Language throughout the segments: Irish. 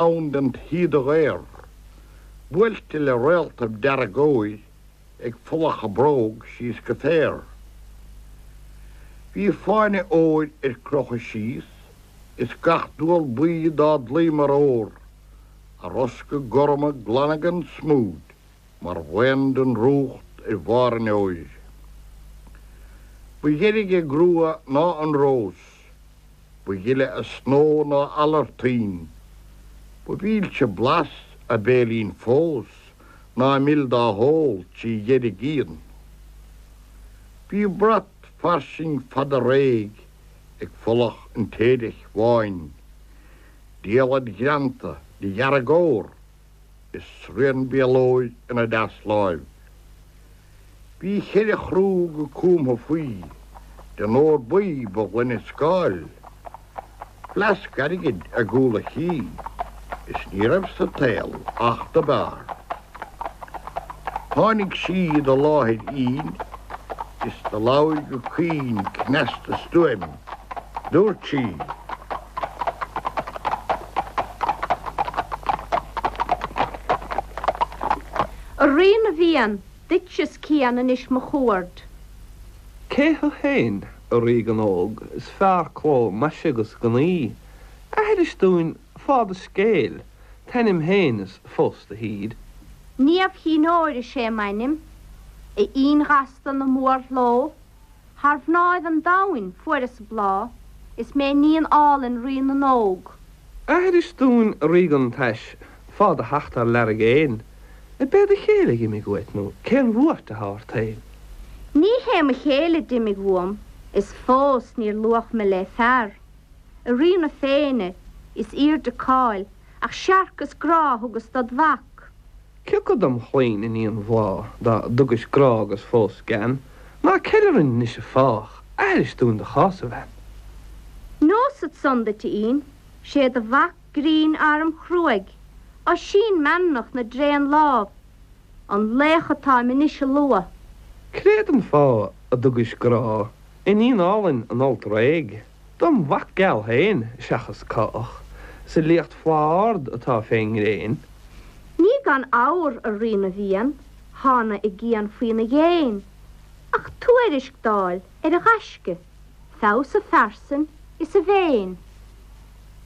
ann den tsíoda dhaor, buailte le réaltaibh dearg óir ag folach a bróg síos go féar. Bhí fáinne óir ar crochadh síos as gach dual buí dá dlaoi mar ór, a rosca gorma glana gan smúid mar bhraon den drúcht ar bharr an fheoir. Ba dheirge a grua ná an rós. ba ghile a snó ná eala ar tuinn, ba mhilse blas a béilín fós ná mil dá hól trí dheargfhíon. Bhí brat fairsing fada réidh ag folach an stéid-eich bháin, diallaid ghreanta de dhearg ór, is srian béalóir ina deasláimh. Bhí cheithre chrú go cumtha faoi, den ór buí ba ghlaine scáil, fleasc airgid i gcúl a chinn, is ní raibh sa tsaol each do b'fhearr. Tháinig sí do láthair Fhinn, is do labhair go caoin cneasta stuaim. Dúirt sí A Rí na bhFiann, duit is cian anois mo chuaird. Cé thú féin, a ríogan óg, is fearr cló maise 'gus gnaoi? Aithris dúinn fáth do scéil, t'ainm féin is fós do thír. Niamh Chinn Óir is é m'ainm, a Fhinn ghasta na mórshló. Thar mhnáibh an domhain fuaireas a bláth, is mé iníon álainn rí na n-óg. Aithris dúinn ríogan tais, fáth do theacht thar lear i gcéin, ab é do chéile d'imigh uait nó cén bhuairt atá ort féin. Ní hé mo chéile d'imigh uaim is fós níor luadh mé le fear, a rí na féinne is aoirde cáil Ach searc is grá a thugas dod mhac. Cé acu dom chlainn iníon bhláth dá dtugais grá agus fós gean, ná ceil orainn anois an fáth, aithris dúinn do chás, a bhean. Neosad san duit a Fhinn, 'sé do mhac grinn armchruaidh, Oisín meanmnach na dtréan lámh, an laoch atáim anois a lua. Créad an fáth a dtugais grá, iníon álainn an fhoilt réidh. Dom mhac geal féin, seachas cách, 's a liacht flaith ard atá fén ngréin. Ní gan abhar, a Rí na bhFiann, thánag i gcian faoina dhéin, ach tuairisc d'fháil ar a ghaisce, feabhas a phearsain is a mhéin.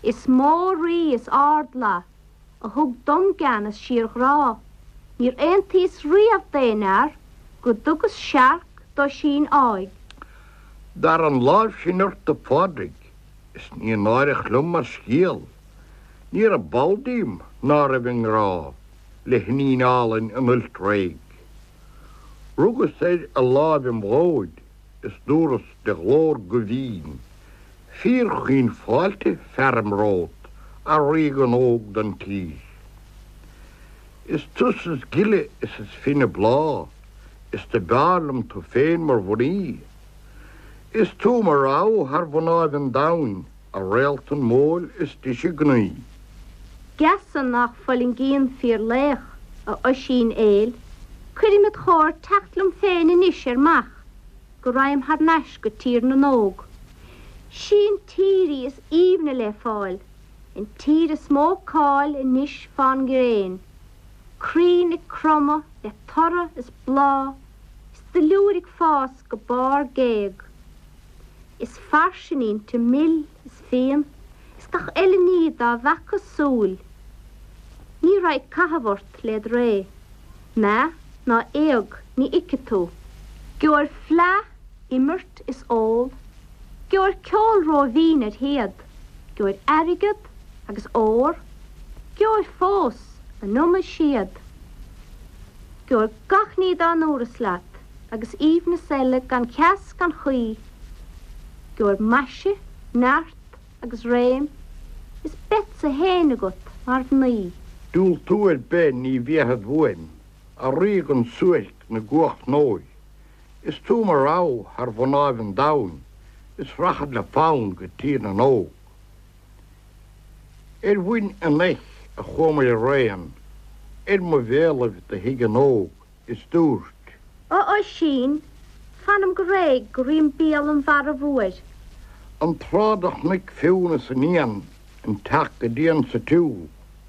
Is mó rí is ardfhlaith. a thug dom gean is síorghrá. Níor aontaíos riamh d'aon fhear go dtugas searc d'Oisín áigh. Dar an láimh sin ort a Phádraig is ní náireach liom mar scéal Ní raibh ball díom ná raibh i ngrá le hiníon álainn an fhoilt réidh. Rugas ar a láimh im dhóid is dúras de ghlór guthbhinn, fíorchaoin Fáilte fearaim romhat, a ríogan óg don tír. Is tusa is gile is is finne bláth, is do b'fhearr liom tu féin mar mhnaoi, Is tú mo rogha thar mhnáibh an domhain, a réaltan mhodhúil is deise gnaoi. geasa nach fulaingíonn fíorlaoch, a Oisín fhéil, cuirim id chomhair teacht liom féin anois ar m'each go ragham thar n-ais go Tír na nÓg. Sí an tír í is aoibhne le fáil, an tír is mó cáil anois fán ngréin. crainn ag cromadh le toradh is bláth is duilliúr ag fás go barr géag is fairsing inti mil is fíon is gach uile ní dá bhfeaca súil ní raghaidh caitheamh ort led ré, meath ná éag ní fheicfidh tú. Gheobhair fleadh, imirt is ól, gheobhair ceol róbhinn ar théad, gheobhair airgead, agus ór, gheobhair fós an iomad séad, gheobhair gach ní dá ndúras leat agus aoibhneas eile gan ceas gan chaoi, gheobhair maise, neart agus réim is beadsa féin agat mar mhnaoi. Diúltú ar bith ní bhéarfad uaim, a ríogan suairc na gcuacha n-óir, is tú mo rogha thar mhnáibh an domhain is rachad le fonn go Tír na nÓg. Ar mhuin an eich a chuamair araon, ar mo bhéalaibh do shuigh an óigh, is dúirt. A Oisín, fanam go réidh go ríom béal an mhara mhóir. An tráth do chonaic Fionn is an Fhiann an t-each go dian sa tsiúl.